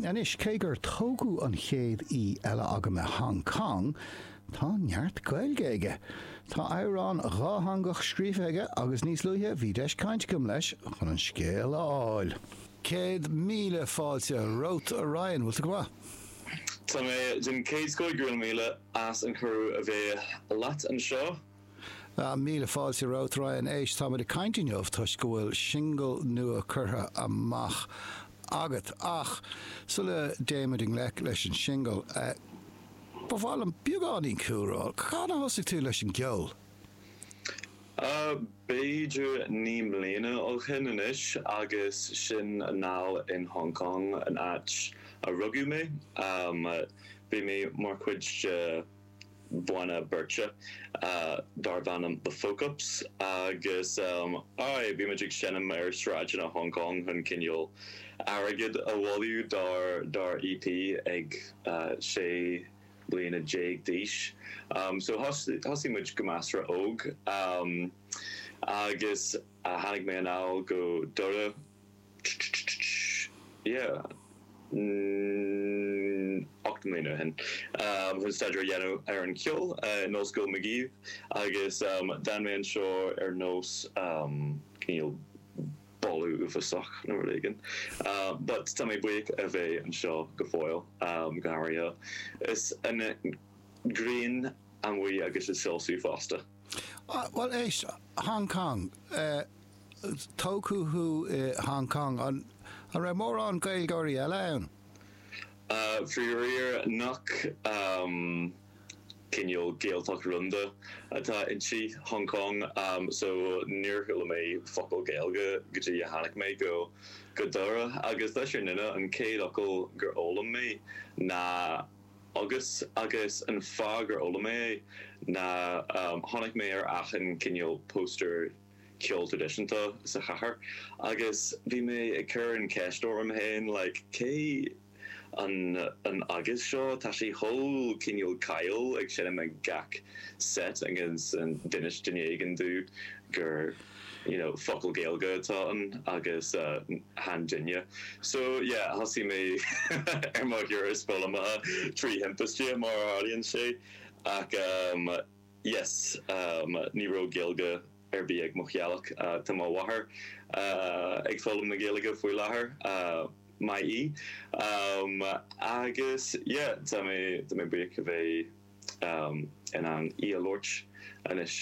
Anois, cé gur tógadh an chéad aoi eile agam i Hong Cong, tá neart Gaeilge aige. Tá amhrán dhátheangach scríofa aige agus níos luaithe bhí deis cainte agam leis chun an scéal a fháil. Céad míle fáilte romhat, a Ryan. Bhfuil tú go maith? Tá mé den chéad scoth. Go raibh míle as an chuireadh a bheith leat anseo. Míle fáilte romhat, a Ryan. Éist, táimid ag caint inniu toisc go bhfuil singil nua curtha amach agat. Ach sula dtéimid i ngleic leis an singil, ba mhaith liom beagáinín cúlra. Cathain a thosaigh tú leis an gceol? B'fhéidir naoi mbliana ó shin anois, agus sin anall in Hong Cong, an áit a rugadh mé. Bhí mé mar chuid de. banna beirte darb ainm The Folk Ups agus aye, bhí muid ag seinm ar sráideanna Hong Cong chun cineál airgead a bhailiú dár EP ag sé bliana déag d'aois. So thosaigh muid go measartha óg agus tháinig mé anall go Doire, ocht mbliana ó shin chun staidéar a dhéanamh ar an cheol in Ollscoil Magee agus d'fhan mé anseo ar nós cineál boladh uafásach nó rud éigin. But tá mé buíoch a bheith anseo go fóill, go háirithe is an ghrian amuigh agus ag soilsiú fosta. Bhuel, éist, Hong Cong, tógadh thú i Hong Cong, an raibh mórán Gaeilgeoirí eile ann? Faraor nach cineál Gaeltacht rúnda atá inti Hong Cong, so níor chuala mé focal Gaeilge go dtí a tháinig mé go Doire, agus leis an fhírinne an chéad fhocal gur fhoghlaim mé ná. Agus, agus an fáth gur fhoghlaim mé é ná chonaic mé ar achan cineál póstaer ceoil traidisiúnta sa chathair agus bhí mé ag cur an cheist orm féin like cé an an agus seo tá sé chomh cineál cáiliúil ag seinm ag gach seit agus d'inis duine éigin domh gur you know, focal Gaeilge atá ann agus chan duine. So, yeah, thosaigh mé ar mo thuras foghlamaithe trí thimpiste, mar a tharlaíonn sé, ach em, yes, em, ní raibh Gaeilge ar bith ag mo theaghlach. Tá mo mháthair ag foghlaim na Gaeilge faoi láthair, maith í. Em, agus yeah, tá mé, tá mé buíoch a bheith. in ann í a labhairt anois,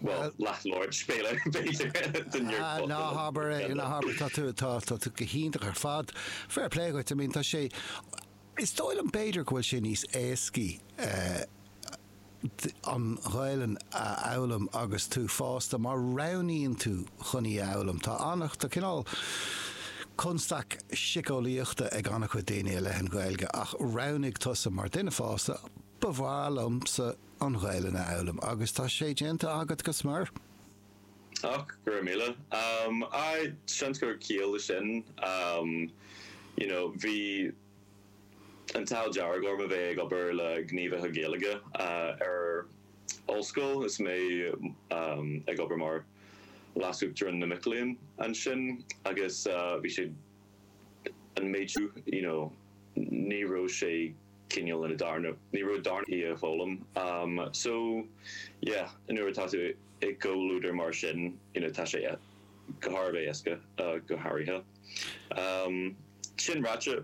bhuel, leathlabhairt, fair play, b'fhéidir, den Eorpach. Ná habair é, ná habair, tá tú, tá tú go hiontach ar fad, fair play dhuit, I mean, tá sé, is dóigh liom, b'fhéidir, go bhfuil sé níos éascaí an Ghaelainn a fhoghlaim agus tú fásta, má roghnaíonn tú. chun í a fhoghlaim. Tá an, tá cineál constaic siceolaíochta ag an-chuid daoine i leith an Ghaeilge ach roghnaigh tusa mar duine fásta, ba mhaith liomsa an Ghaelainn a fhoghlaim agus tá sé déanta agat go smior. Och, go raibh míle. Aye, seans go bhfuil ciall leis sin. You know, bhí an t-ádh dearg orm a bheith ag obair le gníomhaithe Gaeilge ar, ollscoil is mé ag obair mar leasuachtarán na mic léinn ansin agus bhí sé an méid céanna you know ní raibh sé cineál ina darna, ní raibh d'orm í a fhoghlaim so yeah nuair atá tú i gcomhluadar mar sin you know tá sé thar a bheith éasca go háirithe. Sin ráite.